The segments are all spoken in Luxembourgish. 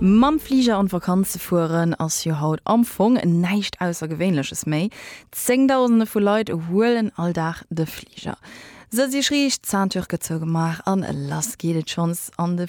Mam Fliger an d'Vakanz ze fueren ass jo haut am Fong näischt Aussergewéinleches méi. Zéngdausende vu Leit huelen all Dag de Fliger. Sëtz Iech riicht, Ceinture gëtt zougemaach an lass geet et schonns an de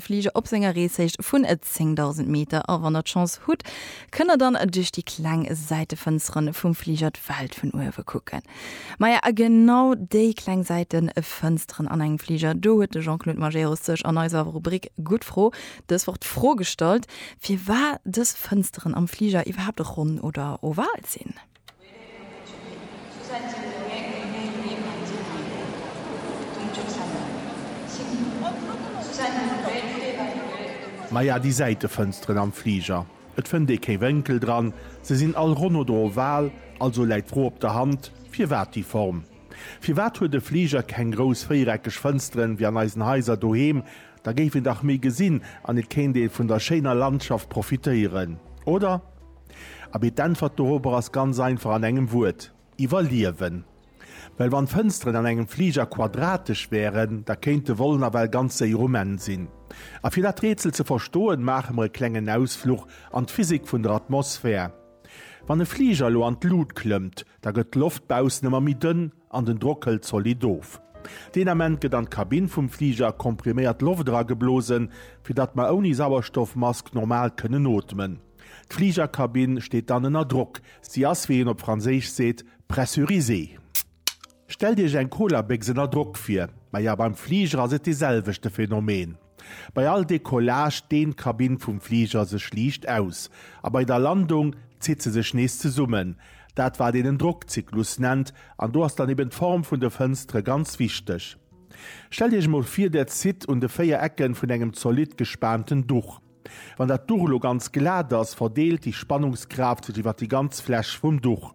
Fliger op senger Reeshéicht vun 10.000 Meter. A wann der d'Chance hutt, kënnt der dann duerch déi kleng Säitefënstere vum Fliger d'Welt vun uewe kucken. Maja, a genau déi kleng Säitenfënsteren an engem Fliger, do huet de Jean-Claude Majerus sech an eiser Rubrik Gutt Fro dës Woch d'Fro gestallt, firwar dës Fënsteren am Fliger iwwerhaapt ronn oder oval sinn. Maja, déi Säitefënsteren am Fliger. Et fënnt ee kee Wénkel dran, se sinn all ronn oder oval, also läit d'Fro op der Hand, firwat déi Form? Firwat huet e Fliger keng grouss véiereckeg Fënsteren wéi an eisen Haiser doheem? Da géif een dach méi gesinn an et kéint ee vun der schéiner Landschaft profitéieren, oder? Abee, d'Äntwert dorobber ass ganz einfach an engem Wuert. Iwwerliewen. Well wann d'Fënsteren an engem Fliger quadratesch wären, da kéint de Vol nawell ganz séier um Enn sinn. A fir dat Rätsel ze verstoen, maache mer e klengen Ausfluch an d'Physik vun der Atmosphär. Wann e Fliger elo an d'Lut klëmmt, da gëtt d'Loft baussen ëmmer méi dënn an den Drock hëlt zolidd of. Deen Ament gëtt an d'Kabinn vum Fliger kompriméiert Loft erageblosen, fir datt mer ouni Sauerstoffmask normal kënnen ootmen. D'Fligerkabinn steet dann ënner Drock, si ass, wéi een op Franséisch seet, pressurisée. Stellt Iech eng Colabécks ënner Drock vir. Ma ja, beim Fliger ass et dee selwechte Phänomen. Bei all Decollage deent d'Kabinn vum Fliger sech liicht aus, a bei der Landung zitt se sech nees zesummen, dat wat een en Drockzyklus nennt, an do ass dann eben d'Form vun de Fënstere ganz wichteg. Stellt Iech emol vir, Där zitt un de 4 Ecken vun engem zolidd gespaanten Duch. Wann dat Duch elo ganz glat ass, verdeelt déi Spannungskraaft sech iwwer déi ganz Fläch vum Duch.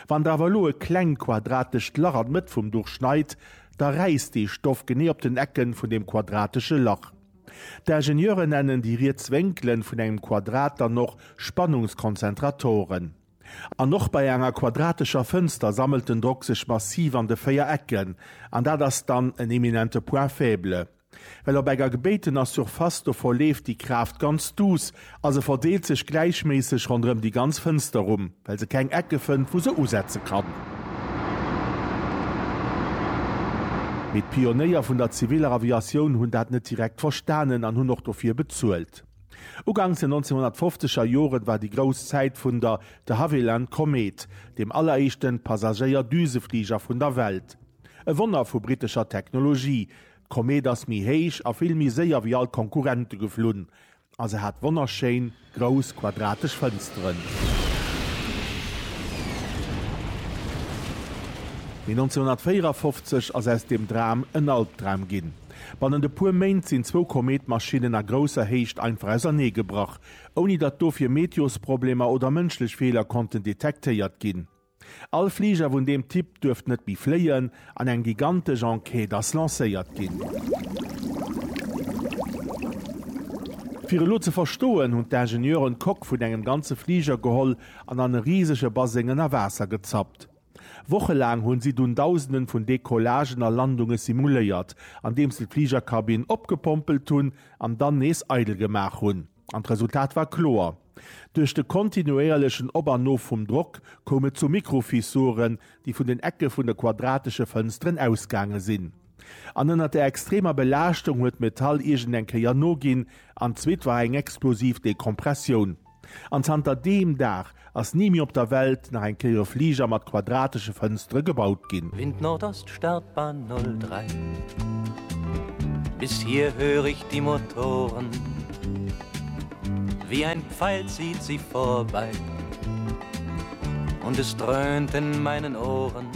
Wann der awer elo e kleng quadratescht Lach an d'Mëtt vum Duch schneit, da räisst dee Stoff genee op den Ecken vun deem quadratesche Lach. D'Ingenieure nennen déi riets Wénkelen vun engem Quadrat dann och Spannungskonzentratoren. An och bei enger quadratescher Fënster sammelt den Drock sech massiv an de 4 Ecken, an dat ass dann en eminente Point faible. Well op enger gebéitener Surface do verleeft déi Kraaft ganz duuss a se verdeelt sech gläichméisseg ronderëm déi ganz Fënster rum, well se keng Ecke fënnt, wou se usetze kann. Mee d'Pionéier vun der ziviler Aviatioun hunn dat net direkt verstanen an hunn och dofir bezuelt. Uganks den 1950er Joren war déi grouss Zäit vun der de Havilland Komet, dem alleréischten Passagéier-Düsefliger vun der Welt. E Wonner vu brittescher Technologie, D'Komeet ass méi héich a vill méi séier wéi all d'Konkurrente geflunn a se hat wonnerschéin, grouss, quadratesch Fënsteren. Mee 1954 ass aus deem Dram en Albdram ginn. Bannent e puer Méint sinn zwou Komeetmaschinnen a grousser Héicht einfach ausernee gebrach, ouni datt dofir Meteosproblemer oder mënschlech Feeler konnten detektéiert ginn. All Fliger vun deem Typ duerft net méi fléien an eng gigantesch Enquête ass lancéiert ginn. Fir elo ze verstoen, hunn d'Ingenieuren d'Coque vun engem ganze Fliger geholl an an e risege Baseng ënner Waasser gezappt. Wochelaang hunn si dunn Dausenden vun Decollagen a Landunge simuléiert, andeems se d'Fligerkabinn opgepompelt hunn an dann nees eidel gemaach hunn. An d'Resultat war kloer, Duerch de kontinuéierlechen Op an Of vum Drock koum et zu Mikrofissuren, déi vun den Ecke vun de quadratesche Fënsteren ausgaange sinn. An ënner der extremer Belaaschtung huet d'Metall iergendeng Kéier noginn, an d'zweet war eng explosiv Dekompressioun. An zanter deem Dag Ass ni méi op der Welt nach eng Kéier e Fliger mat quadratesche Fënstere gebaut ginn. Wind Nordost, Startbahn 03. Bis hier hör ich die Motoren, wie ein Pfeil zieht sie vorbei und es dröhnt in meinen Ohren.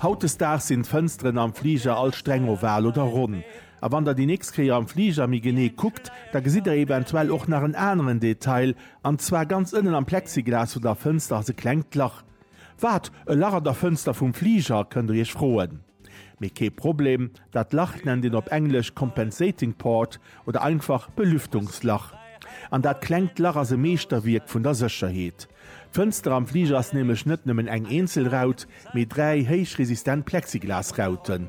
Hautdesdaags sinn d'Fënsteren am Fliger all streng oval oder ronn. A wann der déi nächst Kéier am Fliger méi genee kuckt, da gesitt der eventuell och nach en aneren Detail, An zwar ganz ënnen am Plexiglas vun der Fënster ass e klengt Lach. Wat, e Lach an der Fënster vum Fliger? kënnt der iech froen. Mee kee Problem, dat Lach nennt een op Englesch Compensating Port oder einfach Belüftungslach. An dat klengt Lach ass e Meeschterwierk vun der Sécherheet. D'Fënster am Fliger ass nämlech net nëmmen eng eenzel Raut, mee dräi héichresistent Plexiglasrauten.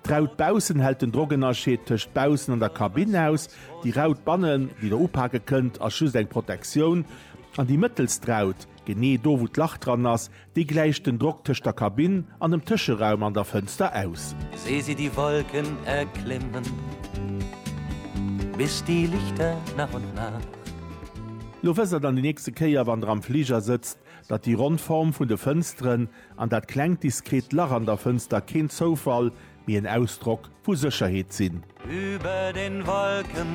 D'Raut baussen hält den Drockennerscheed tëscht baussen an der Kabinn aus, déi Raut bannen, déi Der upake kënnt, ass just eng Protektioun, an déi mëttelst Raut, genee do wou d'Lach dran ass, déi gläicht den Drock tëscht der Kabinn an dem Tëscheraum an der Fënster aus. Seh sie die Wolken erklimmen bis die Lichter nach und nach. Lo wësst Der dann déi nächste Kéier, wann Der am Fliger sëtzt, Datt déi ronn Form vun de Fënsteren an dat klengt diskret Lach an der Fënster keen Zoufall, mee en Ausdrock vu Sécherheet sinn. Über den Wolken